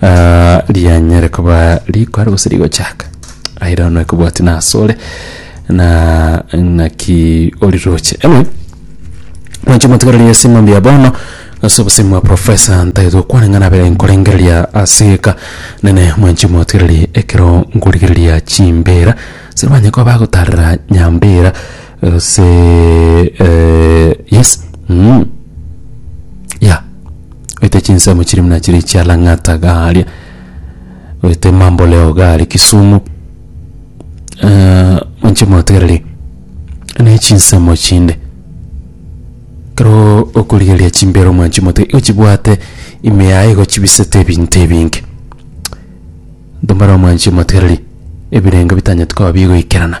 Ah, rianyare koba rikware gose rigochaka aira ono ekobwati nasore na ng'aki oriroche anyway mwanche mwatigareri ase eng'ombe ya bono ase obosemi bwa profesa ntagete gokwana ng'a nabere nkorengereria aseka nene mwanche mwatigareri ekero nkorigereria chimbera sirwanye koba bagotarera nyambera Ase eh, yes mm. ya oite chinsemo chiri muna chiri chia lang'ata garia oite mamboleo gari kisumu Eh, monche motegereri ne chinsemo chinde kero okorigereria chimbero omwanchi mote ochibwate ime yaye igochibisete ebinto ebinge ntomare omwanchi motereri ebirengo bitanyeti koba bigoikerana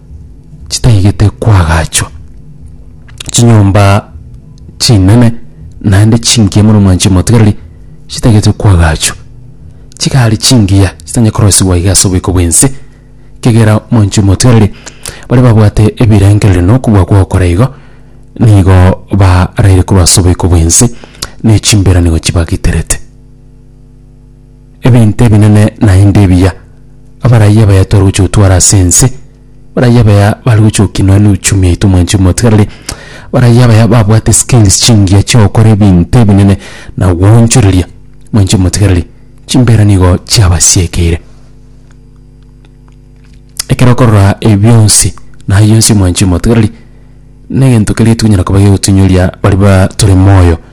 chitaigete kwagachwa chinyomba chinene naende chingiya mono mwanchi omotigareri chitagete kwagachwa chigari chingiya chitanye korosibwa iga ase oboiko bwense kegera mwanchi omotigareri baria babwate ebirengereri na okobua gwokora igo nigo baraire korwa ase oboiko bwense ne chimbera nigo chibagiterete. Ebinto ebinene naende ebiya, abaraiya baya tware gochia gotwara ase ense, abaraiya baya bare gochia gokinwa n'uchumi yaito mwanchi omotigareri, abaraiya baya babwate skills chingiya chi'ogokora ebinto ebinene na gwoonchoreria mwanchi omotigareri, chimbera nigo chiabasiekeire. Ekero okorora ebi bionsi, na ayio onsi mwanchi omotigareri, negento keria tokonyara koba gegotunyioria baria ba tore moyo.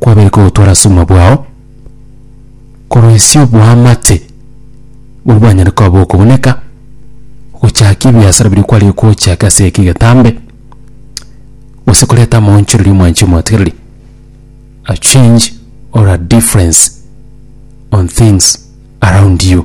kwabere kogotwara ase obogima bwao, koroisia oboamate boria bwanyare koba bokogoneka, gochakia ebiasara biria kwarenge kochaka ase eke egetambe, gose koreta amaonchoreria ya omwancho omotigereri, a change or a difference on things around you.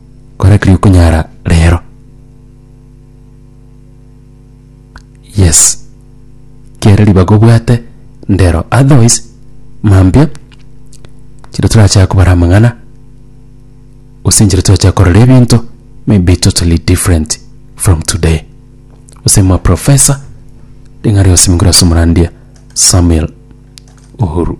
Kore kiri okunyara rero. Yes. Kere ribaga obwate ndero. Otherwise, mambia, chire turachaka kobara amang'ana, gose nchire turachaka korora ebinto may be totally different from today. Gose mwa professor, ring'ana rionsi mokore ase omorandia Samuel Uhuru.